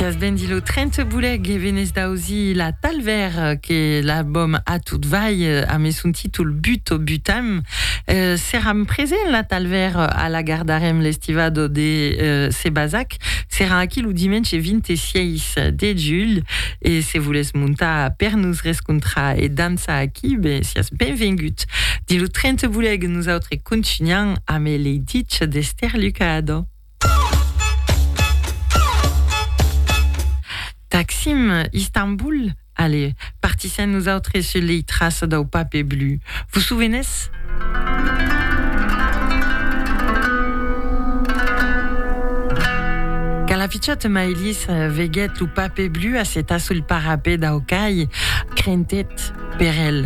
Siás ben dit lo 30 bolèc e venés d'ausir la Talvèr que l'albòm A tot vai amé son títol But o Butam. Seràm present la Talvèr a la Gardarèm l'estivado de Se Basac. Serà aquí lo dimenge 26 de julh e se volés montar per nos rescontrar e dançar aquí ben siás benvengut. Dins lo 30 bolèc nosautres contunham amé lei ditge d'Ester Lucado. Taksim, Istanbul, ale, partissèm nosautres sus lei traças dau pape blu. Vos sovenètz? Quand la pichòta Maïlis veguèt lo pape blu assetat sul parapet dau cai, crentèt. per el,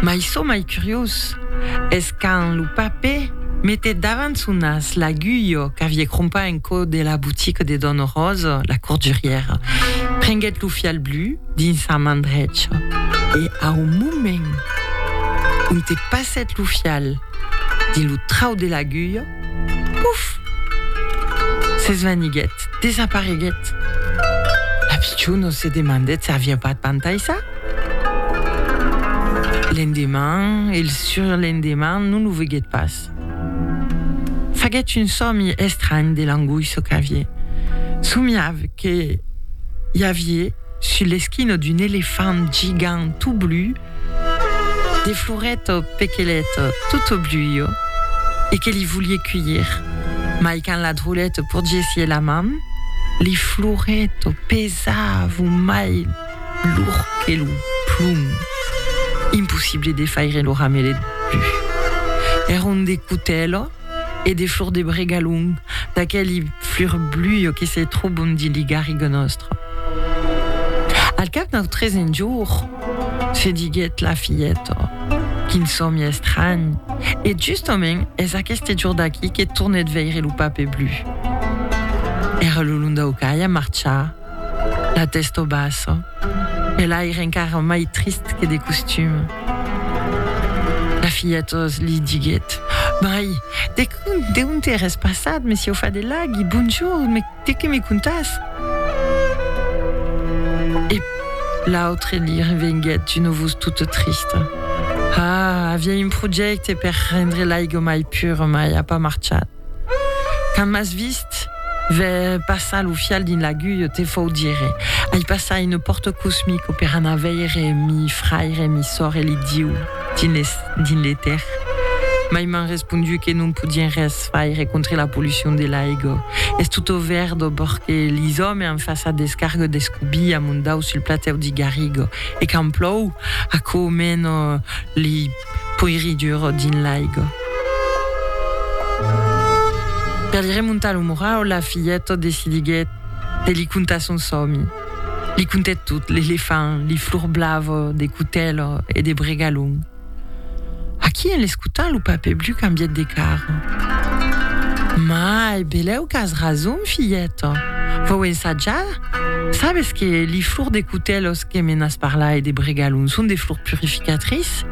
mai çò mai curiós es quand lo pape metèt davant son nas l'aguilha qu'aviá crompa en cò de la botica de dòna Rosa, la cordurièra, prenguèt lo fial blu dins sa man drecha e au moment ont e passèt lo fial dins lo trau de l'aguilha, Puf! S'esvaniguèt, desapareguèt. La pichona se demandèt s'aviá pas pantaissat. L'endeman e el surlendeman non lo veguèt pas. Faguèt un sòmi estranh de l'angoissa qu'avié. Somiav que i avié, sus l'esquina d'un elefant gigant tot blu, De floret au pequelet tot au bluio e que li volie cuilhir, mai quand la drolette porgessié la man, li floret au pesavo mai lourd que lo plom. Impossible de faire lo ramelet plus. Era un decutelo. e de flor de bregalhon, d'aqueli flur bluio que se trobon dins li garrigons nòstre. Al cap d'un tresen jour, se diguèt la filheta, quin sòmi estranh! E justament es aqueste jour d'aquí que tornèt veire lo pape blu. Era lo londaucaia marcha. La tèsto bassa e l'aire encara mai trist que de costum. La filheta li diguèt, Mai, de ont eres passat, messieu Fadelagi? Bonjorn, de qué me contas? E l'autre li revenguèt d'un ovus tota trista, Ah, aviá un projècte per rendre l'aiga mai pura, mai a pas marchat. Quand m'as vist ver passar lo fial dins l'aguilh, te fau dire, Ai passar une pòrta cosmic per anar veire mi fraire, mi sòr e li Diu dins l'etèr. Mai m'an respondu que non podien res faire contre la pollucion de l'aiga. Es tot au verd au bòrd que lis òmes an façat descarga d'escobí a mon dau sul platèu d'i Garriga. E quand plòu, aquò mena li. poiridur dins l'aiga. Per li remontar lo morau, la filheta decidiguèt de li contar son sòmi. Li contèt tot, l'elefant, li flors blava de cotèla e de bregalhon. Aquí, en l'escotar, lo pape Blu cambièt de cara. Mai, belèu qu'as rason, filheta. Vòu ensatjar? Sabes que li flors de cotèla Que me n'as parlait de bregalon, son de flor purificatrice?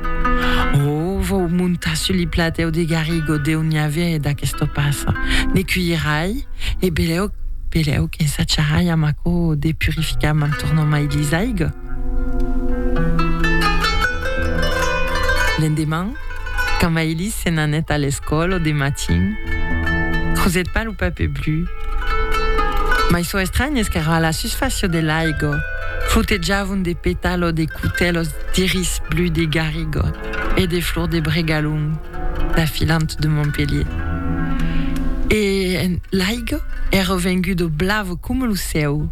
Ò, vau montar sus li platèu de Garrigo deu n'i avè d'aquesta passa. Ne cuirai, e belèu, belèu qu'ensajarai amb aquò de purificar m'en tornant mai lis aiga. L'endeman, quand Maïlise se n'anèt a l'escòla de matin, crosèt pas lo papè blu. Mai çò estranh es qu'èra a la susfàcia de l'aiga. Fotejavon de petalo de cotèlos d'iris blu de Garrigot e de flor de bregalhon da filant de Montpelhier. E l'aigo èra vengudo blavo coma lo cèu.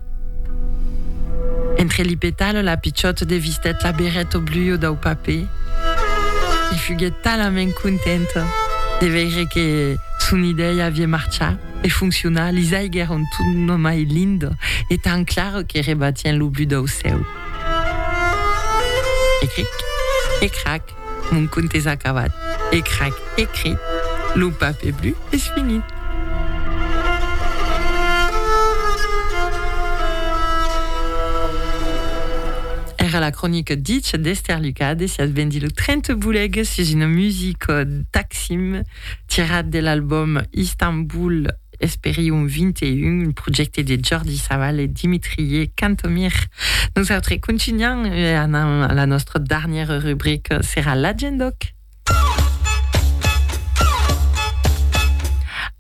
Entre li petalo la pichòta de vistèt la berreta blua dau papè e fuguèt talament contenta de veire que son idèia aviá marchat. E fonccionar, lis aigs èran tot nomai linda e tan clara que rebatien lo but dau cèu. E cric! E crac! Mon conte es acabat! E crac! E cric! Lo papè blu es finit! Èra la cronica Ditge d'Èster Lucas, desiás ben dilh 30 bolegas sus una musica d'Axim. Tirat de l'album Istanbul Esperium 21, un projècte de Jordi Savall e Dimitrie Cantomir. Nosautres contunham e anam a la nòstra darnièra rubrica, serà l'Agendòc.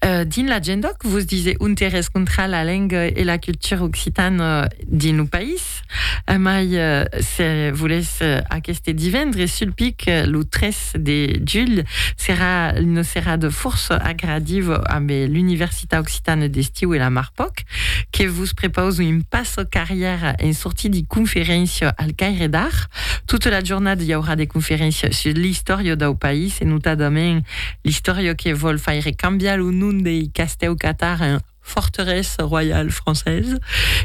Dins l'Agendòc vos disè ontes rescontrar la lenga e la cultura occitana dins lo país. Amai se volètz aqueste divendres sul pic, lo 3 de julh, serà una serada fòrça agradiva ambe l'Universitat Occitana d'Estiu e la Marpoc que vos prepausan un passa carrièra en sortir de conferéncia al Caire d'Art. Tota la jornada i aurà de conferéncias sus l'istòria dau país e notadament l'istòria que vòl faire cambiar lo nom dei castèu Catar en forteresse royale française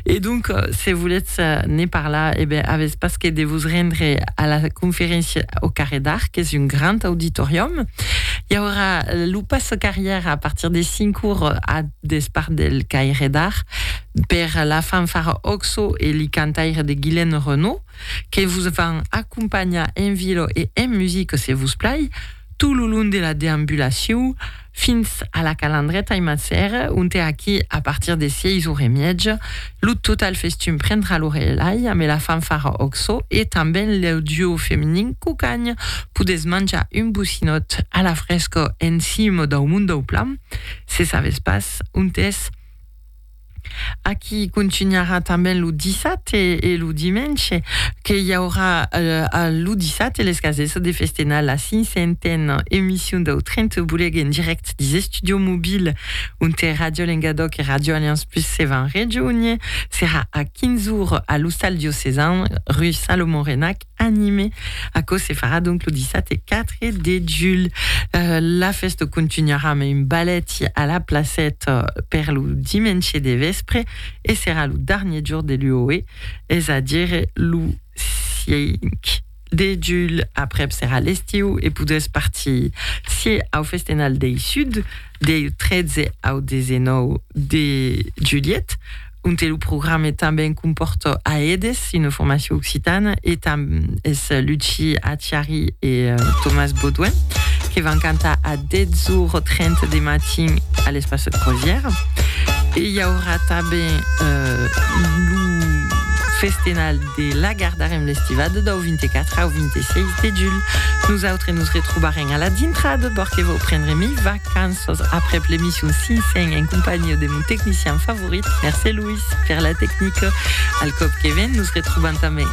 et donc se voletz ne parlar eh ben avètz pas que de vos rendre a la conferéncia au Carré d'Art qu'es un grand auditorium i aurà lo passe carrière a partir de 5 ora a despart del Caire d'Art per la fanfara Oxo e li cantaires de Guilaine Renaud que vos van acompanhar en vilo e en musique se vos plai tot lo long de la deambulacion fins a la Calandreta i Massère, onte aquí, a partir de sièis ore e mièja, lo total festum prendrà lo relai amé la fanfara Oxo e tanben lo duo feminin Cucagn, podètz manjar un bocinòt a la fresca en cima dau Mont dau Plan, se sabètz pas ont es. Aquí contunharà tanben lo dissabte e lo dimenge, que i aurà lo dissabte les cases de festenar la cinquantena emission dau Trento Boleg en dirèct dins Estudio Mobil, onte Ràdio Lengadòc e Ràdio Aliança Plus se van rejónher. Serà a 15 ora a l'Ostal Diocesan, rue Salomon Renac. anime. Aquò se farà donc lo dissabte 4 de julh. La fèsta contunharà amb un ballet a la placèta per lo dimenge de vèspre e serà lo darnier jorn de l'UOE, es a dire lo 5 de julh. Aprèp serà l'estiu e podètz partir sieu au Festenal dei Sud deu 13 au 19 de julhet. onte lo programe tanben compòrta Aedes, una formacion occitana, e tam es Luci Acciari e Tomàs Baudouin que van cantar a 10h30 de matin a l'Espace de Croisière. E i aurà tanben lo festenal de la gar darem l'estivada dau 24 au 26 de julh. Nosautres nos retrobarem a la dintrada, bòrque vau prendre mivac. Cançons après l'emission Cinsain en compagnia de mon tecnicien favorit, merci Louis per la tecnica. Al còp que ven nos retrobam tanben.